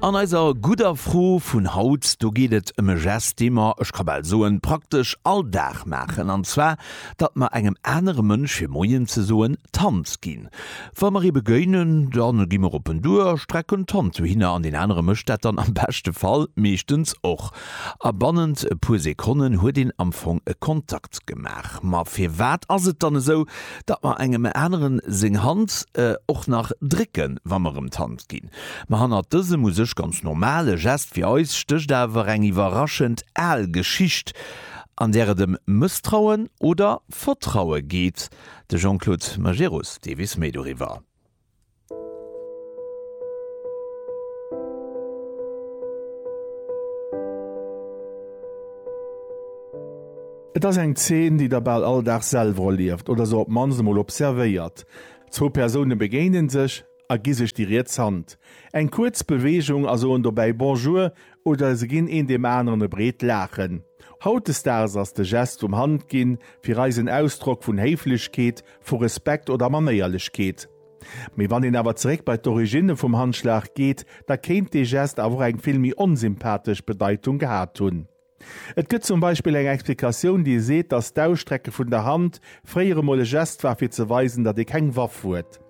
An eiser gudder Fro vun haut, do geet et ëm e Gest, dee mer, ech ka bal soen, praktesch all Dag maachen, an zwar datt mer engem anere Mënsch fir Moien ze soen d'Hand ginn. Wa mer ee begéinen, da gi mer op en duer a strecken d'Hand dohinner an deen anere mécht dat dann am beschte Fall meeschtens och. A bannent e puer Sekonnen huet een am Fong e Kontakt gemaach. Ma firwat ass et dann esou, datt mer engem aneren seng Hand och nach drécken, wa mer em d'Hand ginn. Ma hannert dësem u sech ganz normale Gest fir eis stécht awer eng iwwerraschend al Geschicht, an där et em Mësstrauen oder Vertraue geet. De Jean-Claude Majerus deelweis méi doriwwer. Et ass eng Zeen, déi der bal all Dag selwer erlieft oder se op d'mannst emol observéiert. Zwou Persoune begéine sech a gi sech déi riets Hand. Eng kuerz Beweegung a soen dobäi Bonjour oder se ginn een deem aneren e breet Laachen. Hautdesdaags ass de Gest vum Handginn fir eis en Ausdrock vun Héiflechkeet vu Respekt oder Manéierlechkeet. Mee wann een awer zeréck bei d'Origine vum Handschlag geet, da kéint dee Gest awer och eng vill méi onsympathesch Bedeitung gehat hunn. Et gëtt zum Beispill eng Explikatioun, déi seet, datt d'Ausstrecke vun der Hand fréier emol e Gest war, fir ze weisen, datt ee keng Waff huet.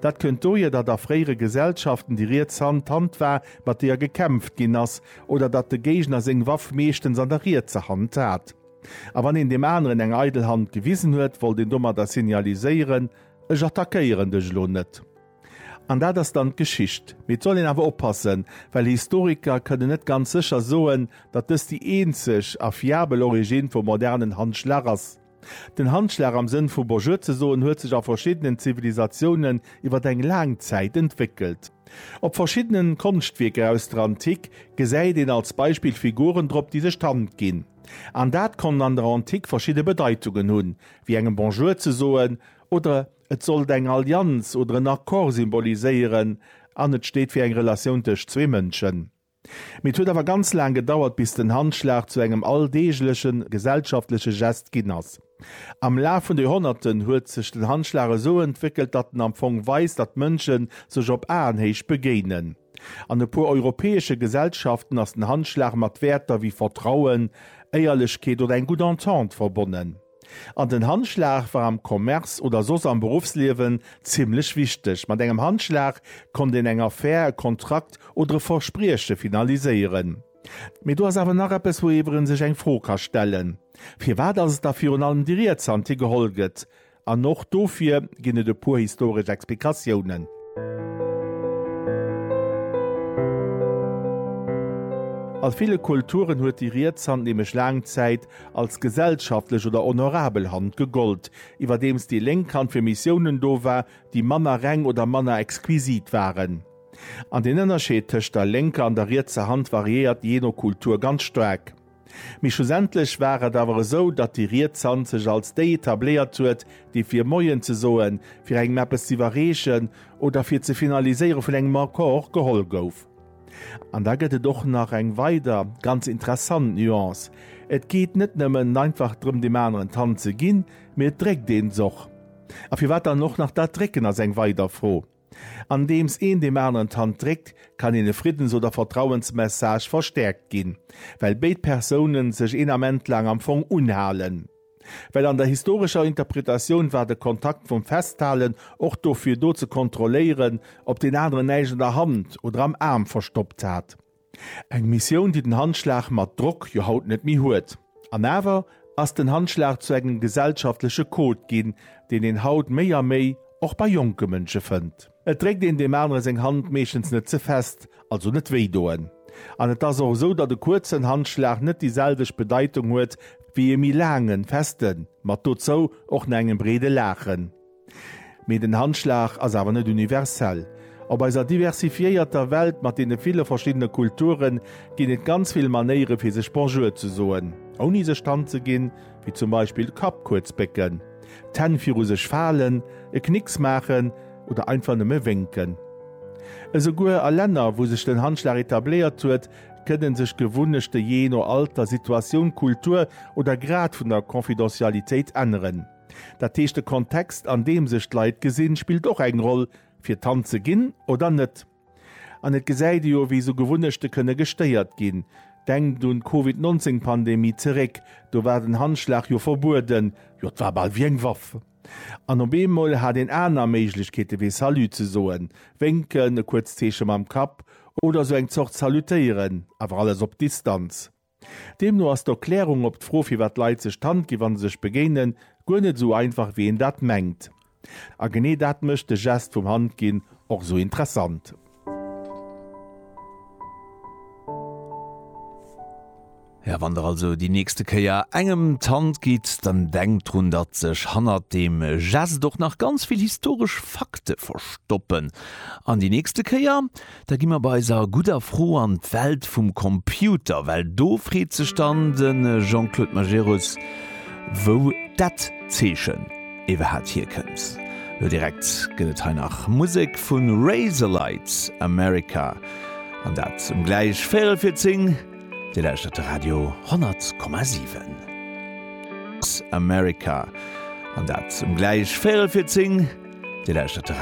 Dat kënnt dohier, datt a fréiere Gesellschaften déi riets Hand d'Hand war, mat deeër gekämpft ginn ass, oder datt de Géigner seng Waff meeschtens an der rietser Hand hat. A wann een deem aneren eng eidel Hand gewisen huet, wollt een domadder signaliséieren, Ech attackéieren dech elo net. An dat ass dann d'Geschicht. Mee et soll een awer oppassen, well Historiker kënnen net ganz sécher soen, datt dëst déi eenzeg a fiabel Originn vum modernen Handschlag ass. Den Handschlag am Sënn vu Bonjour ze soen huet sech a verschiddenen Zivilisatiounen iwwer eng laang Zäit entwéckelt. Op verschiddenen Konschtwierker aus der Antik gesäit een als Beispill Figuren drop déi sech d'Hand ginn. An dat konnt an der Antik verschidde Bedeitungen hunn, wéi engem Bonjour ze soen oder et sollt eng Allianz oder en Accord symboliséieren an et steet fir eng Relatioun tëscht zwee Mënschen. Mee et huet awer ganz laang gedauert, bis den Handschlag zu engem alldeegleche gesellschaftleche Gest ginn ass. Am Laf vun de Joerhonnerten huet sech den Handschlag esou entwéckelt, datt en am Fong weist, datt Mënsche sech op Aenhéicht begéinen. An e puer europäesche Gesellschaften ass den Handschlag mat Wäerter wéi Vertrauen, Éierlechkeet oder eng gutt Entente verbonnen. An den Handschlag war am Commerce oder soss am Beruffsliewen zimmlech wichteg. Mat engem Handschlag konnt een eng Affär, e Kontrakt oder e Versprieche finaliséieren. Mee do ass awer nach eppes, wouiwwer ee sech eng Fro ka stellen, Firwat ass et da virun allem déi riets Hand, déi geholl gëtt? An och dofir ginn et e puer historesch Explikatiounen. A ville Kulturen huet déi riets Hand nämlech laang Zäit als gesellschaftlech oder honorabel Hand gegollt, iwwerdeems déi lénk Hand fir Missiounen do war, déi manner reng oder manner exquisit waren. An den Ënnerscheed tëscht der lénker an der rietser Hand variéiert jee no Kultur ganz staark. Mee schlussendlech war et awer esou, datt déi riets Hand sech als déi etabléiert huet, déi fir Moien ze soen, fir engem eppes z'iwwerreechen oder fir ze finaliséiere vun engem Accord geholl gouf. An da gëtt et och nach eng weider ganz interessant Nuance, Et geet net nëmmen einfach drëm deem aneren d'Hand ze ginn, mee et dréckt een s'och. A firwat dann och nach dat Drécken ass eng weider Fro. Andeems een deem aneren d'Hand dréckt, kann een e Friddens oder Vertrauensmessage verstäerkt ginn, well béid Persoune sech een Ament laang am Fong unhalen. Well an der historescher Interpretatioun war de Kontakt vum Festhalen och dofir do ze kontrolléieren, ob deen aneren näischt an der Hand oder am Aarm verstoppt hat. Eng Missioun, déi den Handschlag mat Drock jo haut net méi huet. An awer ass den Handschlag zu engem gesellschaftleche Code ginn, deen een haut méi a méi och bei jonke Mënsche fënnt. Et dréckt een deem anere seng Hand meeschtens net ze fest, also net wéi doen. An et ass och esou, datt e kuerzen Handschlag net déi selwecht Bedeitung huet wéi e méi laangen, festen, mat dozou och na engem breede Laachen. Mee den Handschlag ass awer net universell. Op eiser diversifiéierter Welt mat deene ville verschiddene Kulturen ginn et ganz vill Manéiere fir sech Bonjour ze soen, ouni sech d'Hand ze ginn, wéi zum Beispill de Kapp kuerz bécken, d'Hänn viru sech falen, e Knicks maachen oder einfach nëmme wénken. Esouguer a Länner, wou sech den Handschlag etabléiert huet, kënne sech d'Gewunnechte jee no Alter, Situatioun, Kultur oder Grad vun der Confidentialitéit änneren. Dat heescht, de Kontext, an deem sech d'Leit gesinn, spillt och eng Roll, fir d'Hand ze ginn oder net. An et gesäit ee jo, wéi esou Gewunnechte kënne gestéiert ginn. Denkt un d'Covid 19 Pandemie zeréck, do war den Handschlag jo verbueden, jo et war bal wéi eng Waff. An op eemol hat een aner Méiglechkeete wéi Salut ze soen, Wénken, e kuerzt Zeeche mam Kapp oder esou eng Zort Salutéieren, awer alles op Distanz. Deemno ass d'Erklärung op d'Fro firwat d'Leit sech d'Hand ginn wann se sech begéinen, guer net esou einfach wéi een dat mengt. A genee dat mécht de Gest vum Hand ginn och esou interessant. Jo, wann der also déi nächste Kéier engem d'Hand gitt, dann denkt drun datt sech hannert deem Gest och nach ganz vill historesch Fakte verstoppen. An déi nächste Kéier Da gi mer bei eiser gudder Fro an d'Welt vum Computer, well do freet sech dann de Jean-Claude Majerus, wou dat Zeechen iwwerhaat hierkënnt. Lo direkt gëtt et hei nach Musek vu Razorlight, America, an dat um gläich véierel fir zéng. Dir lauschtert de Radio 10,7. America, an dat um gläich véierel fir zéng. Dir lauschtert de.